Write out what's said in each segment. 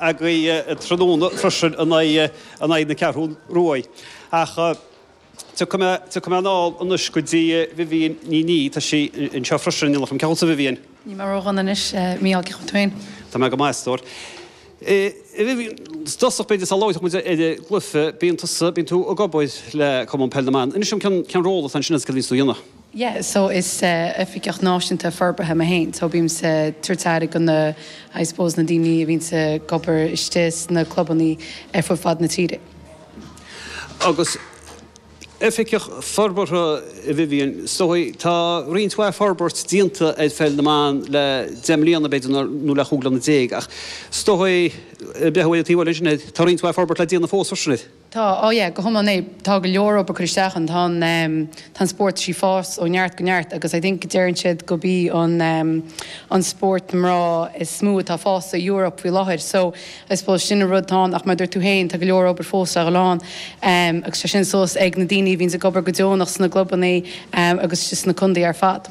againn tráthnóna freisin in aghaidh na Ceathrún Rua ach tiocfaidh mé anall anois go dtí Vivienne Ní Niaidh, tá sí anseo freisin in éineacht linn, cén chaoi a bhfuil tusa Vivienne? Níl mé ró dhona anois, Mícheál, cén chaoi a bhfuil tú féin? Tá mé go maith, a stór. A Vivienne, i dtosach b'fhéidir sula labhróidh muid ar an gcluiche, bíonn tusa, bíonn tú ag obair le Cumann Peil na mBan, inis dom cén ról atá agatsa ansin agus céard a bhíonns tú a dhéanamh? Yeah, so is oifigeach náisiúnta forbartha mé féin, so bímse ag tabhairt aire do na, I suppose, na daoine a bhíonns ag obair istigh sna clubannaí ar fud fad na tíre. Agus oifigeach forbartha, a Vivienne, is dóigh, tá roinnt mhaith forbairt déanta ar Pheil na mBan le deich mbliana, b'fhéidir, nó le cúig bliana déag, ach is dóigh, breathnaím taobh amuigh anseo, tá roinnt mhaith forbairt le déanamh fós freisin, Tá, ó yeah, go hiomlán, eh. Tá go leor obair curtha isteach ann. Tá an, em, tá an spórt ag fás ó neart go neart agus I think deireann siad gurb í an, em, an spórt mná is mó atá ag fás san Eoraip faoi láthair. So, I suppose sin an rud atá ann ach mar a dúirt tú féin, tá go leor obair fós le dhul ann. Em, agus tá sin suas ag na daoine a bhíonns ag obair go deonach sna clubannaí, em, agus just sna contaethaí ar fad.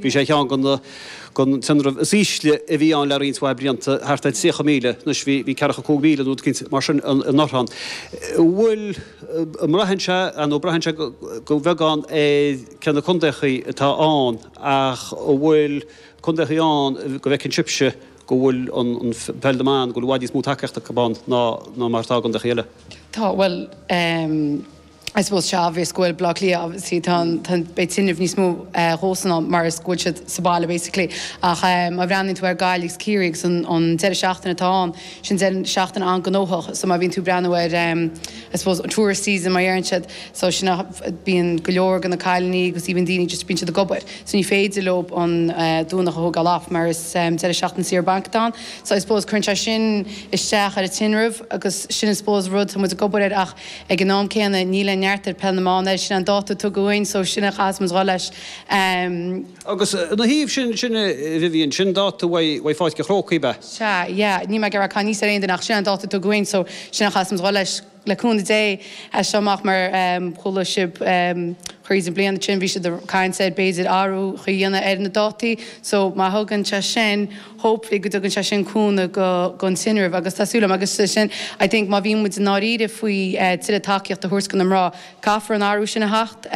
Bhí sé ar cheann de na tinrimh is ísle a bhí ann le roinnt mhaith blianta, thart ar 30,000. Anois bhí 45,000 nó rud éigin mar sin, in 2023. An bhfuil, an mbraitheann sé, nó braitheann sé go beagán ar cé na contaethaí atá ann, ach an bhfuil contaethaí ann go bhfeiceann sibhse go bhfuil an Peil na mBan, go bhfuil i bhfad níos mó tacaíochta acu ann ná mar atá i gcontaethaí eile. Tá, bhuel, eh, I suppose tá sé obvious go bhfuil Bleá Cliath obviously tá an tá an beidh tinreamh níos mó eh dhóibhsean ann mar is go bhfuil siad sa baile basically ach eh má bhreathnaíonn tú ar Gaillimh is Ciarraí agus an an deireadh seachtaine atá ann sin deireadh seachtaine an-gnóthach so má bhíonn tú breathnú ar em I suppose tourist season mar dheireann siad so sin am a bíonn go leor de na cailiní agus even daoine just bíonn siad ag obair so ní féidir leo an eh Domhnach a thógáil off mar is em deireadh seachtaine saoire bainc atá ann so I suppose cuireann sé sin isteach ar an tinreamh agus sin I suppose rud tá muid ag obair air ach Ag an am céanna, níl aon neart ag Peil na mBan, sin é an dáta a tugadh dhúinn, so sin é a chaithfimid dhul leis. Agus ina thaobh sin, sin é, Vivienne, sin dáta uaidh Pháirc an Chrócaigh, ab ea? Sea, yeah, níl mé ag rá tada anuas ar aon duine ach sin é an dáta a tugadh dhúinn, so sin é a chaithfimid dhul leis, le cúnamh Dé, as seo amach mar chuala sibh thríd an bhliain ansin, bhí siad ag caint ar b'fhéidir athrú a dhéanamh ar na dátaí, so má thugann sé sin. hopefully go dtugann sé sin cúnamh don tinreamh agus tá súil agam agus sin I think má bhíonn muid i ndáiríre faoi tuilleadh tacaíocht a thabhairt do na mná, caithfidh an athrú sin a theacht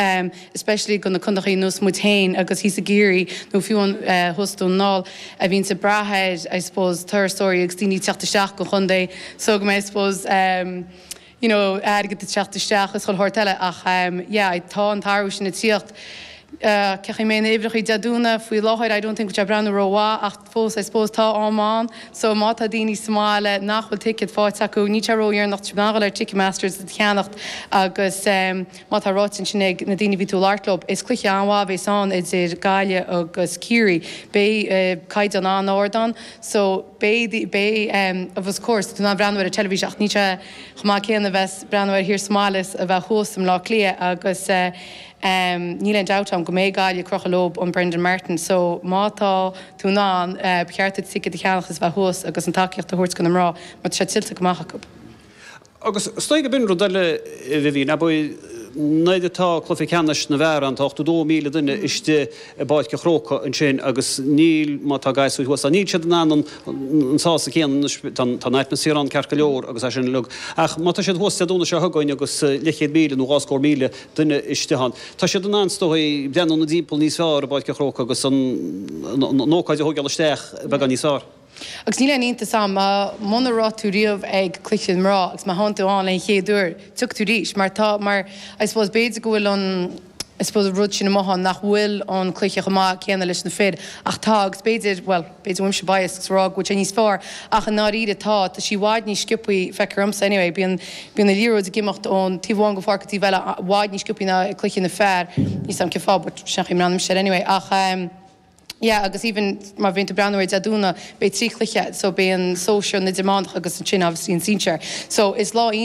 especially do na contaethaí ar nós muid féin agus thíos i gCiarraí nó fiú amháin thuas i nDún na nGall a bhíonn ag brath ar I suppose turasóirí agus daoine ag teacht isteach go dtí an chontae so go mbeidh I suppose. you know airgead ag teacht isteach is chuile shórt eile ach yeah I tá an t-athrú sin ag tíocht. Cheapfainn na huimhreachaí Dé Domhnaigh faoi láthair I don't think ag breathnú ró-mhaith ach fós I suppose tá am ann so má tá daoine sa mbaile nach bhfuil ticket fáighte acu níl sé ró-dheireanach a ghabháil ar Ticketmaster is é a cheannacht agus mar atá ráite ansin ag na daoine a bhí tú ag labhairt leob is cluiche an-mhaith a bhéas ann idir Gaillimh agus Ciarraí beidh caighdeán an-ard ann so Beidh, beidh, of course, tá tú in ann breathnú ar an teilifís air ach níl sé chomh maith céanna a bheith ag breathnú air thiar sa mbaile is a bheith thuas i mBleá Cliath agus níl aon dabht ann go mbeidh Gaillimh ag crochadh leob an Brendan Martin so má tá tú in ann, ba cheart duit ticéad a cheannach is bheith thuas agus an tacaíocht a thabhairt go na mná mar tá sé tuillte go maith acu. Agus is dóigh gob in rud eile, a Vivian, ab é? Nuair atá cluiche ceannais na bhfear ann, tá 82,000 duine istigh i bPáirc an Chrócaigh ansin agus níl, má tá gasúir thuas ann, níl siad in ann an sásamh céanna, anois, tá an atmaisféar ann ceart go leor agus é sin uilig ach má tá siad thuas Dé Domhnaigh seo chugainn agus leathchéad míle nó dhá scór míle duine istigh ann, tá siad in ann, is dóigh, breathnú ina dtimpeall níos fearr i bPáirc an Chrócaigh agus an ócáid a thógáil isteach beagán níos fearr. Agus níl aon iontas ann, muna raibh tú riamh ag Cluiche na Mná, agus má théann tú ann le haghaidh an chéad uair, tiocfaidh tú arís, mar tá, mar, I suppose, b'fhéidir go bhfuil an, I suppose, an rud sin amuigh ann nach bhfuil an cluiche chomh maith céanna leis na fir, ach tá, agus b'fhéidir, bhuel, b'fhéidir go bhfuil mise biased ag rá go bhfuil sé níos fearr, ach i ndáiríre tá, tá sí i bhfad níos sciopthaí, feictear dhomsa anyway, bíonn, bíonn an liathróid ag imeacht ón taobh amháin den pháirc go dtí an taobh eile i bhfad níos sciopthaí ná ag cluiche na bhfear, níl a fhios 'am cén fáth but sin é an mbranda a mbím istigh air anyway, ach ehm. yeah agus even má bhíonn tú breathnú ar Dé Domhnaigh beidh trí chluiche so beidh an sóisear, an t-idirmheánach agus ansin obviously an sinsear so is lá iontach